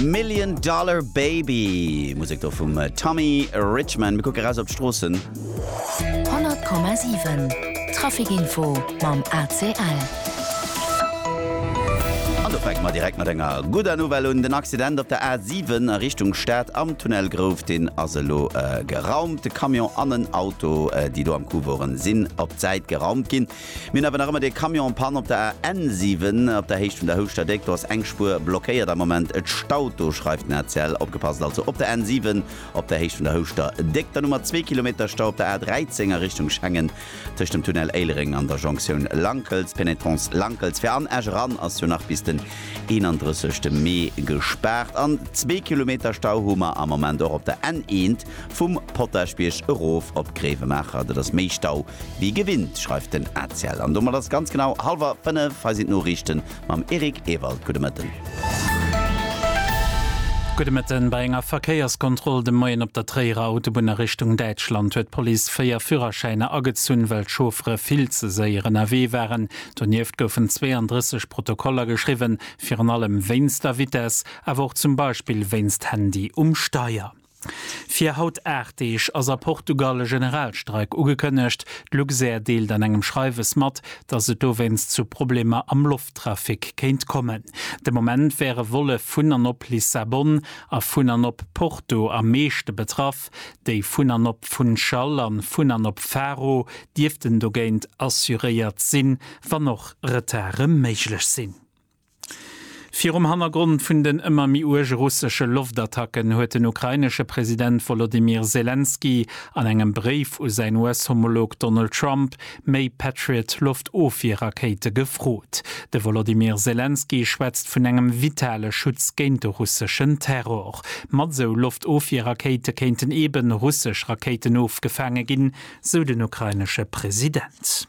Million Dollar Baby, Musek do vum Tommy Richman. Mir kucke raus op d'Stroossen. 100,7 Traficinfo mam ACL. An do fänke mer direkt mat enger gudder Nouvelle un. Den Accident op der A7 a Richtung Stad am Tunnel Grouf, deen ass elo geraumt. De Camion an en Auto, déi do am Coup woren, sinn op d'Säit geraumt ginn. Mir hunn awer nach ëmmer dee Camion en panne op der A 7 op der Héicht vun der Houschter Déck. Do ass eng Spuer blockéiert am Moment. Et staut do, schreift den rtl. Opgepasst also op der N 7 op der Héicht vun der Houschter Déck. Dann hu mer zwee Kilometer Stau op der A 13 a Richtung Schengen tëscht dem Tunnel Éilereng an der Jonktioun Lankels, Pénétrance Lankels. Fir an Esch eran ass jo nach bis den 31 Mee gespaart. An zwee Kilometer Stau hu mer am Moment och op der N 1 Vum Potaschbierg erof op Gréiwemaacher, dat ass méi Stau wéi gewinnt, schreift den Aziel. An domat ass et ganz genau hallwer fënnef. Hei sinn d'Noriichten mam Eric Ewald. Gudde Mëtten. Gudde Mëtten. Bei enger Verkéierskontroll de Moien op der Tréierer Autobunn a Richtung Däitschland huet d'Police véier Führerschäiner agezunn, well d'Chauffere vill ze séier ënnerwee waren. Donieft goufen 32 Protokoller geschriwwen, virun allem wéinst der Vitess, awer och zum Beispill wéinst Handy um Steier. Fir haut 8 Deeg ass a Portugal e Generalstreik ugekënnegt. D'Luxair deelt an engem Schreiwes mat, datt et dowéinst zu Problemer am Lofttrafic kéint kommen. De Moment wäre Volle vun an op Lissabon a vun an op Porto am meeschte betraff. Déi vun an op Funchal a vun an op Faro dierften dogéint assuréiert sinn, wann och Retarde méiglech sinn. Virum Hannergrond vun den ëmmer méi uerge russesche Loftattacken huet den ukrainesche President Wolodymyr Selenskyj an engem Bréif u säin US-Homolog Donald Trump méi Patriot-Loftofwier-Rakéite gefrot. De Wolodymyr Selenskyj schwätzt vun engem vitale Schutz géint de russeschen Terror. Mat esou Loftofwier-Rakéite kéinten eeben russesch Rakéiten ofgefaange ginn, sou den ukrainesche President.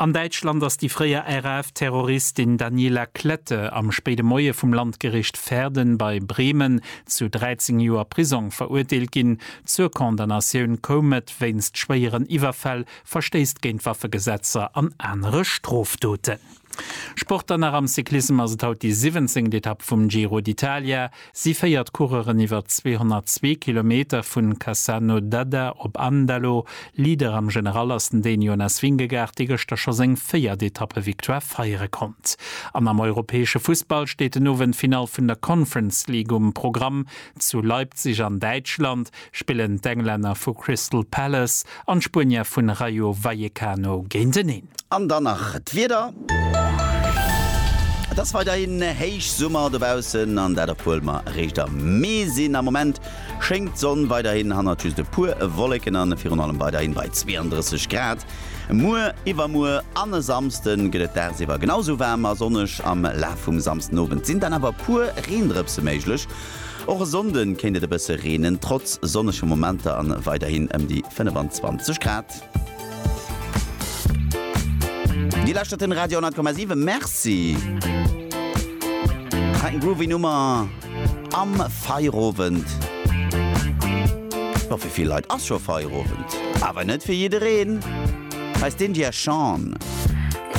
An Däitschland ass déi fréier RAF-Terroristin Daniela Klette am spéide Moie vum Landgericht Verden bei Bremen zu 13 Joer Prisong verurteelt ginn. Zur Condamnatioun koum et wéinst schwéieren Iwwerfäll, Verstéiss géint Waffegesetzer an anere Strofdoten. Sport dann nach, Am Cyclissem ass et haut déi siwwenzéngt Etapp vum Giro d'Italia. Si féiert d'Coureuren iwwer 202 Kilometer, vun Cassano d'Adda op Andalo. Leader am General ass den Dän Jonas Vingegaard, dee gëschter scho seng véiert Etappe-Victoire feiere konnt. An am europäesche Fussball steet den Owend d'Finall vun der Conference League um Programm. Zu Leipzig an Däitschland spillen d'Englänner vu Crystal Palace an d'Spuenier vun Rayo Vallecano géinteneen. An dann nach d'Wieder. Et ass weiderhin Héichsummer dobaussen an dat obwuel mer eréischt am Mee sinn. Am Moment schéngt d'Sonn weiderhin hannert just e puer Wolleken an virun allem weiderhin bei 32 Grad. Muer, iwwermuer an e Samsde gëtt et dagsiwwer genau esou waarm a sonneg. Am Laf vum Samsdenowend sinn dann awer e puer Reendrëpse méiglech, Och e Sonnde kéint et e bësse reenen, trotz sonnege Momenter an weiderhin ëm déi 25 Grad. Dir lauschtert den Radio 10,7. Merci! Nach eng groovy Nummer am Feierowend. Jo, fir vill Leit ass scho Feierowend, awer net fir jiddereen. Hei ass d'India Shawn.